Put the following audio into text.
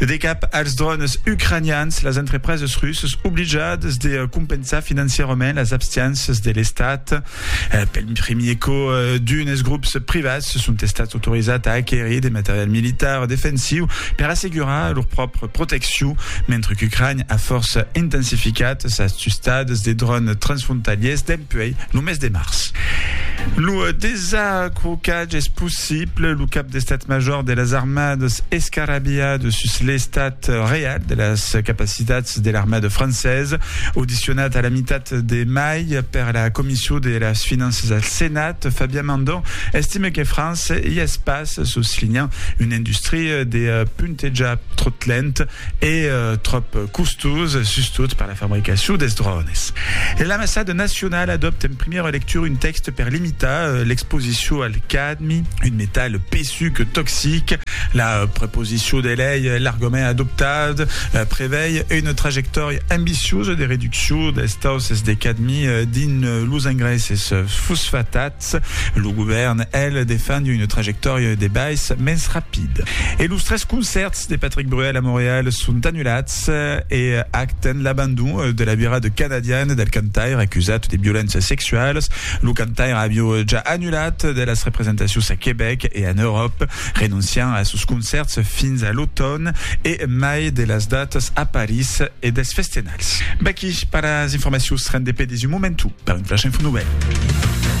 De cap als drònes ucranians, las entrepreses russas oblijadas de compensar financièrament las abstianças de l'Estat. Pel primier còp, d'unes grops privats son estats autorizats a aquerir de material militar defensiu per assegurar lor pròpria proteccion, mentre qu'Ucrània a fòrça intensificat sas tustadas de drònes transfrontalièrs dempuèi lo mes de març. Lo desacrocatge es possible. Pleu lo cap d'estat major de las armadas escarabilhada sus l'estat real de las capacitats de l'armada francesa. Audicionat a la mitat de mai per la Comission de las Finanças al Senat, Fabien Mandon estime que França i es pas, soslinhant una industria de puntejar tròp lent e tròp costós, sustot per la fabricacion dels drònes. L'Ambassada nacionala adòpta en primièra lectura un tèxte per limitar l'exposicion al cas Un metal pesuc, toxic. La proposicion de lei e l'argument adoptat prevei una trajectòria ambiciosa de reduccion dels tausses de cadmi dins los engraisses fosfatats. Lo govèrn, el, defend una trajectòria de bais mens rapid. E los tres concèrts de Patrick Bruel a Montreal son anulats e acten l'abandon de la virada canadiana del cantaire acusat de violéncias sexualas Lo cantaire avió ja annulat de las representacions a Quebec e en Euròp, renonciant a sos concèrts fins a l'automn e mai de las datas a París e dels festenals. Vaqui per las informacions rendepedis un momentu per un flash info novèl.